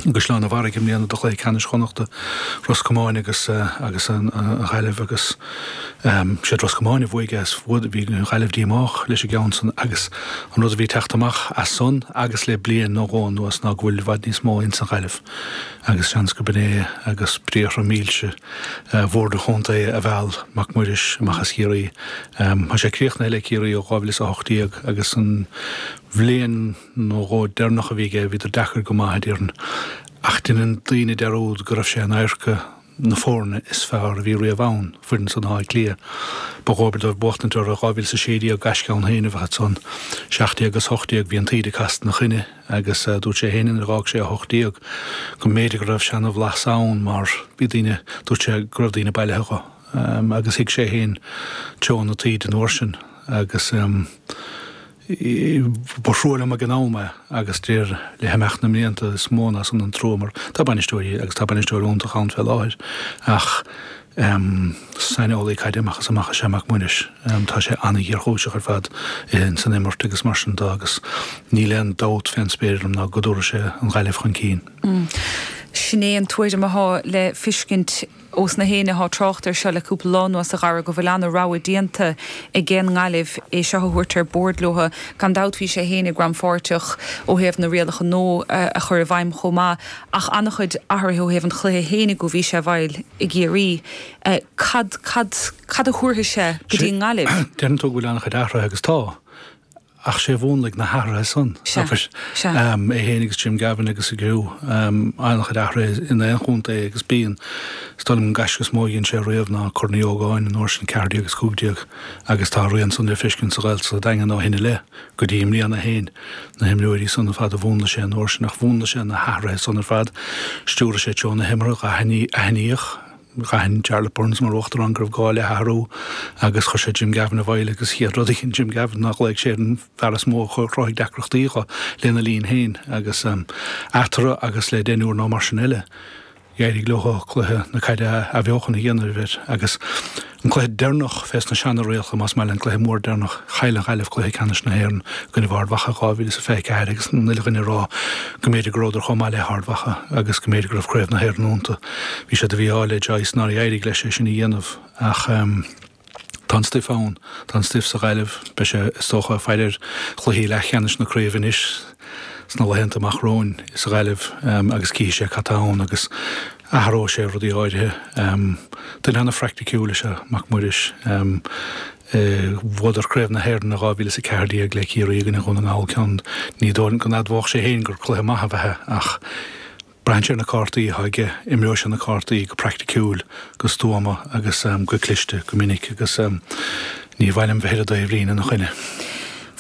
Caisleán an Bharraigh i mbliana do chluiche ceannais Chonnachta Ros Comáin agus agus an Ghaillimh agus siad Ros Comáin a bhuaigh as fuad bhí an Ghaillimh díomách leis an gceann san agus an rud a bhí ag teacht amach as san agus le bliain nó dhó anuas ná go bhfuil i bhfad níos mó insan Ghaillimh agus seans gur b'in é agus briathra mílse Bhord an Chontae a mheall Mac Muiris amach as Ciarraí. Tá sé críochnaithe le Ciarraí ó 2018 agus an bhliain nó dhó deireanach a bhí aige, bhíodar deacair go maith, a déarfainn, ach deineann daoine dearúd go raibh sé in adharca na foirne is fearr a bhí riamh ann, foireann san Átha Cliath. Ba dhóbair dóibh buachtaint orthu i 2016, gaisce ann féin a bheadh ansan. Seacht déag is hocht déag, bhí an taoide casta ina choinne agus dúirt sé féin nuair a dh'fhág sé a hocht déag go mb'fhéidir go raibh seana-bhlas ann mar bhí daoine, dúirt sé go raibh daoine bailithe dho agus thuig sé féin treo na taoide an uair sin agus. Ba thrua liom ag an am é agus dáiríre le himeacht na mblianta is mó ná san an trua mar tá bainisteoirí agus tá bainisteoir iontach ann fé láthair ach saineolaí caide amach is amach is ea Mac Muiris. Tá sé an-ghéarchúiseach ar fad in san imirt agus mar sin de agus níl aon dabht fén spéir orm ná go dtabharfaidh sé an Ghaillimh chun cinn. Sin é an tuairim atá le fiscint. Ós na héinne athá trácht air seo le cúpla lá anuas a Dhara, go bhfuil an-rogha déanta aige an nGaillimh é seo a thabhairt ar bord leothu, gan dabht bhí sé féinig rannpháirteach ó thaobh na rialacha nua a chur i bhfeidhm chomh maith, ach an-chuid athruithe ó thaobh an chluiche féinig ó bhí sé i bhfeighil i gCiarraí. Cad, cad, cad a thabharfaidh sé go dtí an nGaillimh? Deireann tú go bhfuil an-chuid athruithe agus tá. ach sé a mhúnlaigh na hathruithe san, é féin agus Jim Gavin agus a gcriú, an-chuid athruithe in aon chontae agus bíonn, is dóigh liom, an gaisce is mó a dhein sé riamh ná Corn Uí Ógáin, an uair sin ceathair déag is cúig déag agus tá a rian san le feiscint sa Ghaeltacht sa Daingean ó shin i leith, go dtí i mbliana féin. Na himreoirí san ar fad a mhúnlaigh sé an uair sin ach mhúnlaigh sé na hathruithe san ar fad, stiúraigh sé treo na himeartha, aithníodh, D'aithin Jarlath Burns mar Uachtarán go raibh gá le hathrú agus chuir sé Jim Gavin i bhfeighil agus an chéad rud a dhein Jim Gavin ná ghlaoigh sé ar an bhfear is mó a chruthaigh deacrachtaí dho lena linn féin agus eatarthu agus le deichniúr nó mar sin eile dh'éirigh leo cluiche na caide athbheochan a dhéanamh air agus an cluiche deireanach fés na seanarialacha más maith leat an cluiche mór deireanach chaill an Ghaillimh cluiche ceannais na hÉireann i gcoinne Ard Mhacha 2024 agus an uile dhuine ag rá go mb'fhéidir go rabhadar chomh maith le hArd Mhacha agus go mb'fhéidir go raibh craobh na hÉireann iontu. Bhí sé de mhí-ádh ar Joyce nár éirigh leis é sin a dhéanamh ach tá an stuif ann, tá an stuif sa Ghaillimh. Beidh sé, is dócha, faire ar chluichí leathcheannais na craoibhe anois sna laethanta amach romhainn sa Ghaillimh agus cífidh sé cad tá ann agus athróidh sé rudaí áirithe. Duine an-phraicticiúil is ea Mac Muiris. Bhuadar Craobh na hÉireann i 2014 le Ciarraí i gcoinne Dhún na nGall ceann, ní dóigh go n-admhódh sé féin gur cluiche maith ab ea ach, Braitheann sé ar na cártaí atá aige, imreoidh sé na cártaí go praiticiúil, go stuama agus go cliste go minic agus ní mhaith liom bheith ar an dtaobhlíne ina choinne.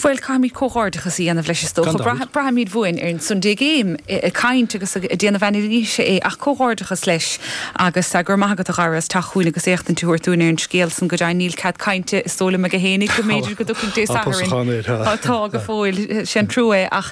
Bhuel, caithfimid comhghairdeachas a dhéanamh leis is dócha. Braithfimid uainn ar an Sunday Game ag caint agus ag déanamh anailíse é ach comhghairdeachas leis agus go raibh maith agat a Dhara as teacht chugainn agus éachtaint a thabhairt dúinn ar an scéal san. Go deimhin níl cead cainte is dóigh liom aige féinig go mb'fhéidir go dtiocfaidh Dé Sathairn. Tá go fóill, sin trua é.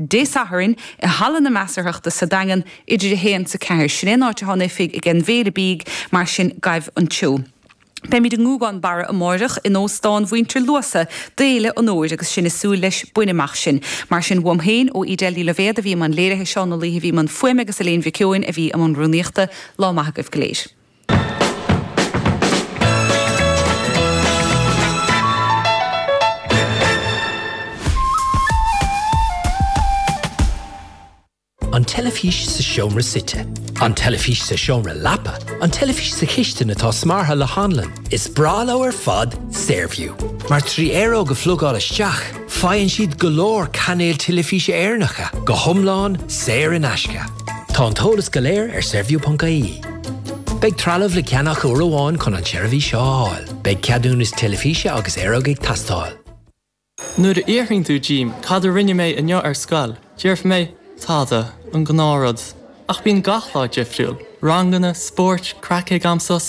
Dé Sathairn, i Halla na Measarthachta sa Daingean, idir 1 's 4. Sin é an áit atá an oifig ag An mBéile Bídh, mar sin gabh ann. Beimid i nGúgán Barra amáireach, in Óstán Mhuintir Luasa, d'Fhéile an Fhómhair, agus sinn ag súil leis Bain amach sinn. Mar sin, uaim féin, ó Edel Ní Loibhéad a bhí i mbun léirithe, Seán Ó Laoithe a bhí i mbun fuaime agus Elaine Mhic Eoin a bhí i mbun rúnaíochta, lá maith agaibh go léir. An teilifís sa seomra suite. An teilifís sa seomra leapa. An teilifís sa chistin atá smeartha le hanlann. Is breá leo ar fad Saorview. Mar trí aeróg a phlugáil isteach, faigheann siad go leor cainéil teilifíse Éireannacha, go hiomlán saor in aisce. Tá an t-eolas go léir ar Saorview ponc IE. Beidh trealamh le ceannach uair amháin chun an tseirbhís seo a fháil. Beidh ceadúnas teilifíse agus aeróg ag teastáil. Nuair a fhiafraíonn tú díom cad a rinne mé inniu ar scoil, déarfaidh mé, Tada, an gnáthrud. Ach bíonn gach lá difriúil. Ranganna, spóirt, craic ag am sosa.